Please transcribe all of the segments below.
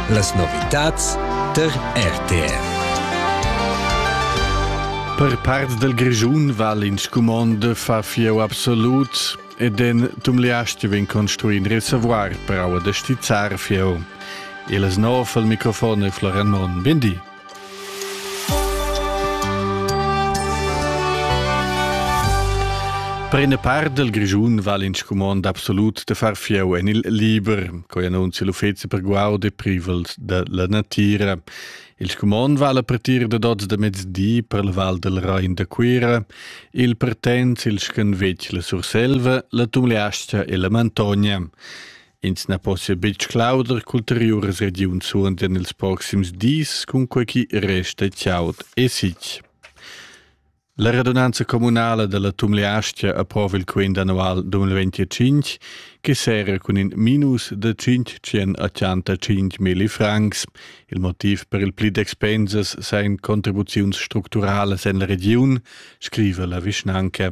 Las novitads tar RTR. Per part del Grischun val in scumond fa fieu absolut ed en tumliasti vin construi in reservoir per aua da stizzar fieu. Il snov al microfon e Floran Mon. Bindi. Per ina part del Grischun val in scumond absolut de far fieu en il liber, coi annunzia l'uffezi per guaud e privels de la natira. Il scumond vala per tir de dots de mezdi per il val del Rain de Cuira, il pertens il schenvec la Surselva, la Tumleastia e la Mantogna. Ins na possia betg clauder qu'ulteriuras regiuns suondian ils proxims dis, cunquai ch'i resta chaud e sitg. La radunanza communala dalla Tumleastgia approva il quint annual 2025 che sera cun in minus da 585 milli francs. Il motiv per il pli d'expensas seien contribuziuns structuralas en la regiun, scriva la vischnanca.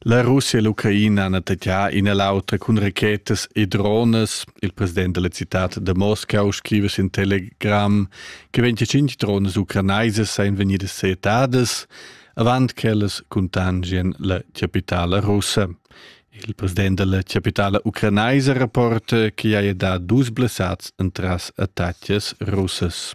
La Russia e l'Ucraina han attaccà in e l'auter cun rachetas e drones. Il president della città de Moscau scrive sin Telegram che 25 drones ucranaisas seien vegnidas seetadas avant ch'ellas contangien la capitala russa. Il president della capitala ucranaisa rapporta che haja dà dus blessats entras attacches russas.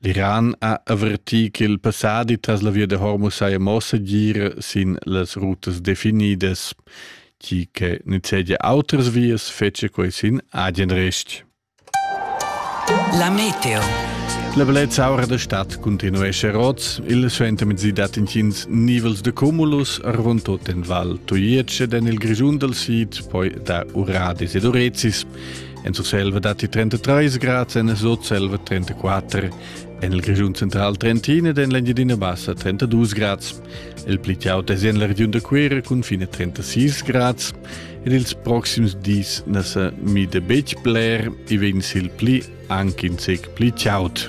L'Iran ha avertì ch'il passadi tras la via da Hormuz saja mo segir sin las rutas definidas, tgi che nizzegia autras vias fetschia quai sin agen rest. La meteo. La bellezza aura da stad continuescha rots. Il suentermezzi dat intgins nivels de cumulus, arvon tot en val Tuietsch ed en il Grischun dal sid, poi da Uradis ed Urezis. En Surselva datti 33 grads, en Sutselva 34, en il Grischun central 31 ed en l'Engiadina Bassa 32 grads. Il pli aut è en la regiun da Cuira cun fine 36 grads ed ils proxims dis na sa mida betg bler, i vegn sil pli anche in sec pli chaud.